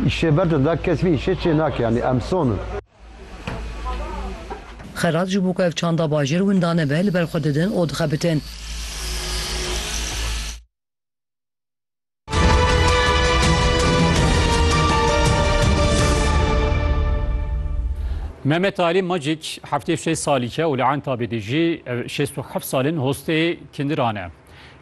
Îşê ber de da kes vî îşê çê nake yanî em son in. Xelat ji bo ku ev çanda bajêr winda nebe li ber xwe didin û dixebitin. Mehmet Ali Magic heftê şêst salî ke û li Entabê dijî, ev şêst û heft sal in hostê Kindiran e.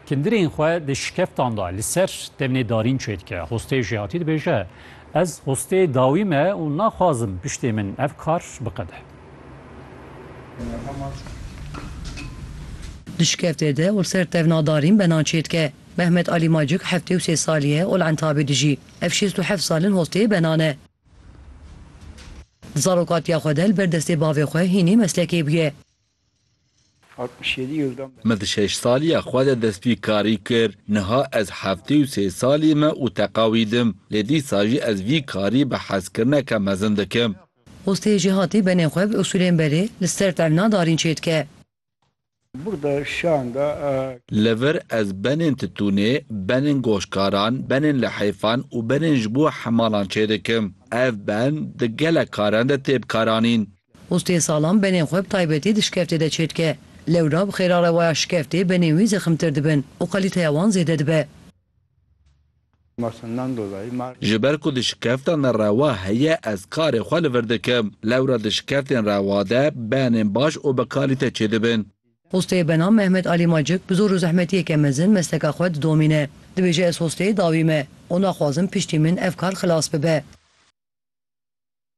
Kindirên xwe di şikeftan de li ser demnê darîn çê dike. Xwestê jî hatî dibêje, Ez xwestê dawî me û naxwazim piştê min ev kar biqede. Di şikeftê de û li ser tevna darîn benan çê dike. Mehmet Alî Macik heftê û sê salî ye û li Entabê dijî. Ev şêst û heft sal in xwestê benan e. Di zarokatiya xwe de li ber destê bavê xwe hînî meslekê bûye. Min di şeş saliya xwe de destpî karî kir. Niha ez heftê û sê salî me û teqa wî dim. Lê dîsa jî ez vî karî bi hezkirineke mezin dikim. Xwestê jêhatî benê xwe bi usûlên berê li ser tevlina darîn çêdike. Li vir ez benên titûnê, benên goşkaran, benên lihêfan û benên ji bo hemalan çêdikim. Ev ben di gelek karen de tê bikaranîn. Postê salan benên xwe bi taybetî di şikeftê de çêdike. Lewra bi xêra rewaya şikeftê benên wî zeximtir dibin û kalîteya wan zêde dibe. Ji ber ku di şikeftan de rewa heye ez karê xwe li vir dikim. Lewra di şikeftên rewa de benên baş û bi kalîte çêdibin. Postê bena Mehmet Alî Macik bi zor û zehmetiyeke mezin mesleka xwe didomîne. Dibêje ez hosteyê dawî me û naxwazim piştî min ev kar xilas bibe.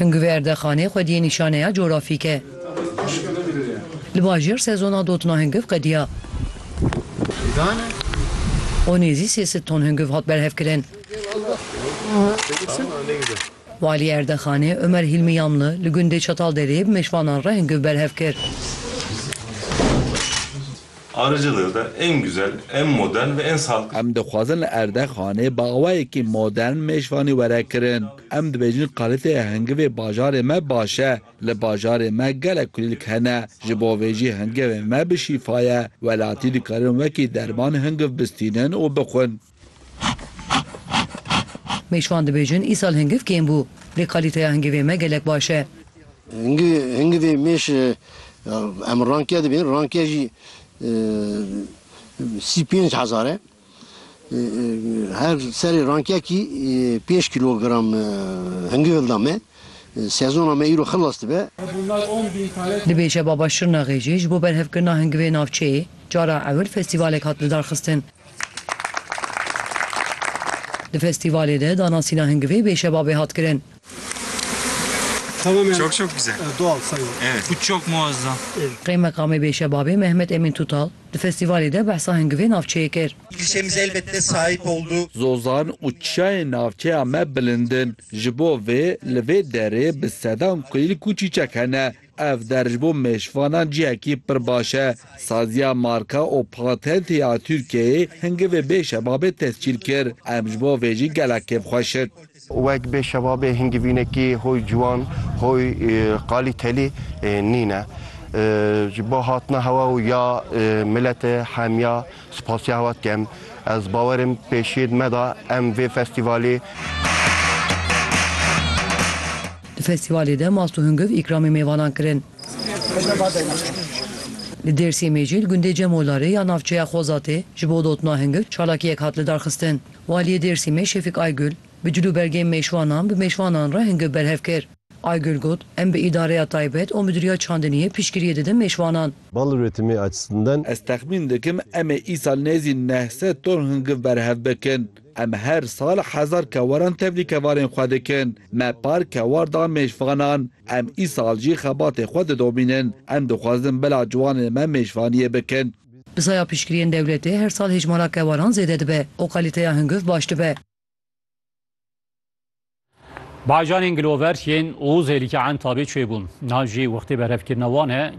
Hingu vê erdexanê xwedî yê nîşaneya coğrafîk e. Li bajêr sezona dotina hingiv qediya. O nêzî sê sed ton hingiv hat berhevkirin. Walî erdexanê Omer Hîlmî Yamli li gundê Çatalderê bi mêşvanan re hingiv berhev kir. Arıcılığ da en güzel, en modern ve en sağlıklı. Em dixwazin li erdexanê bawayekî modern mêşvanî were kirin. Em dibêjin qalitê hingivê bajarê me baş e. Li bajarê me gelek kulîlk hene. Ji bo vê jî hingevê me bi şîfa ye. Welatî dikarin wekî derman hingiv bistînin û bixwin. Mêşvan dibêjin îsal hingiv kêm bû. Lê kalîteya hingivê me gelek baş e. Hingivê mêş em rankiya dibin. Rankiya jî sî pênc hezar e. Her serê rankekî pênc kîlogram hingivil da me. Sezona me îro xilas dibe. Dibêje Baba Şirnexê jî ji bo berhevkirina hingivê navçeyê cara ewil festîvalek hat lidarxistin. Di festîvalê de danasîna hingivê bêşebabê hat kirin. Çok çok güzel. Doğal sayılır. Evet. Bu çok muazzam. Qeymeqamê Bêşebabê Mehmet Emîn Tutal di festîvalê de behsa hingivê navçeyê kir. Klişemize elbette sahip oldu. Zozan û çiyayên navçeya me bilind in. Ji bo vê li vê derê bi sedan kulîlk û çîçek hene. Ev der ji bo mêşvanan cihekî pir baş e. Saziya Marka û Patentê ya Tirkiyeyê hingivê bê şebabê tescîl kir. Em ji bo vê jî gelek kêf xwe şit. Wek bê şebabê hingivînekî hoy ciwan, hoy qalîtelî nîne. Ji bo hatina hewa û ya miletê hemiya spasiya hewa dikem. Ez bawer im pêşiyê di me de em vê festîvalê. Di festîvalê de mast û hungiv îkramê mêvanan kirin. Li Dêrsimê jî li gundê Cemolarê ya navçeya Xozatê ji bo dotina hungiv çalakiyek hat lidarxistin. Waliyê Dêrsimê Şefîk Aygul bi cil û belgên mêşwanan bi mêşwanan re hungiv berhev kir. Aygul got, Em bi îdareya taybet û midûriya çandiniyê piştgiriyê didin mêşwanan. Bal üretimi açısından. Ez texmîn dikim em ê îsal nêzî neh sed ton hungiv berhev bikin. Em her sal hezar kewaran tevlî kevarên xwe dikin. Me par kewar da mêşvanan. Em îsal jî xebatê xwe didomînin. Em dixwazin bila ciwanên me mêşvaniyê bikin. Bi saya piştgiriyên dewletê her sal hêjmara kewaran zêde dibe û kalîteya hunguv baş dibe. Bacanên gilover yên Ozêlî ke entabê çêbûn. Niha jî wextê berhevkirina wan e.